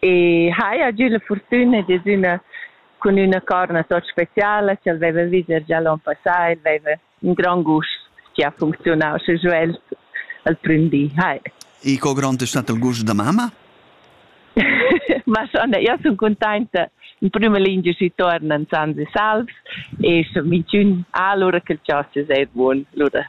E haja giu la fortuna dad üna cun üna corna tot speciala ch'el veva vis er gia l'on passà, el veva in grand gust che ha funcziunau sche jeu el al prüm di. Hai. E co grond è stato il gust da mamma? Ma schon, io sono contenta. In prima linea si tornano Sansi Salvs e so mintun allora che il ciò si è buon. Allora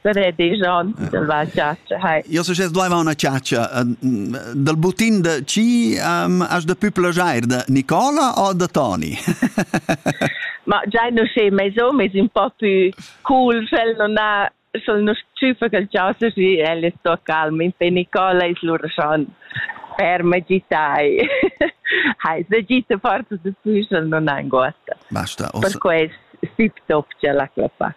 Saredejan dalla chatscha. Hai. Io so sez blaiva una chatscha. Dal butin da chi um, has da pü plagiair da Nicola o da Toni? Ma giai nu sche meis hom es ün po pü cool, sch'el non ha sch'el nu tschüfa quel chasa schi el es sto calm, in pe Nicola es lur schon per magitai. Hai, da gita forza da pü sch'el non ha anguotta. Basta. Per quest tip top c'è la clappa.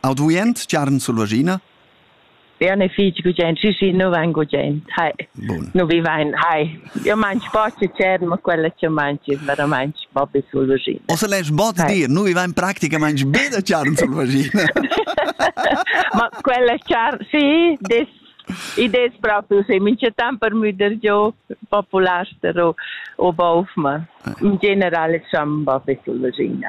Auduient giarn sul vagina? Bea ne fitg gugent, sì sì, nu vain gugent, hai, nu vi vain, hai. Io mangi pochi cern, ma quella che mangi veramente proprio sul vagina. O se lei sbot dir, nu vi vain praticamente be da charn sul vagina. ma quella charn, sì, des idees proprio, se mi c'è tant per müder giò popular o, o baufma. In generale siamo proprio sul vagina.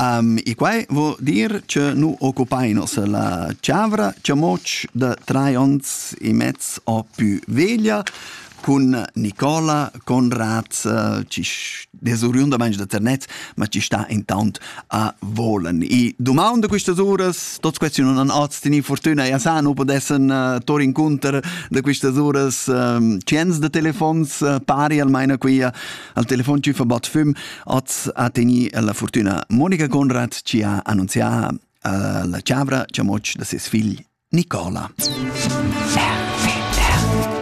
Um, e quai vuol dir che nu occupainos la chavra, che moch da tre ons e mezz o più veglia cun Nicola Conrad eh, ci desoriundamente da Ternet, ma ci sta intant a volen. I domanda quistas uras, tots questi non han oz teni fortuna e sa nu podessen uh, tor incontr da quistas uras um, ciens de telefons uh, pari almaina quia Al telefon tschüffa Bad Füm az ha tegni la fortüna Monica Conrad chi ha annunzià eh, la chavra chamoch da ses figl Nicola.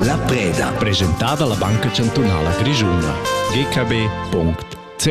La preda. Presentata alla Banca Chantunala Grischuna. gkb.ch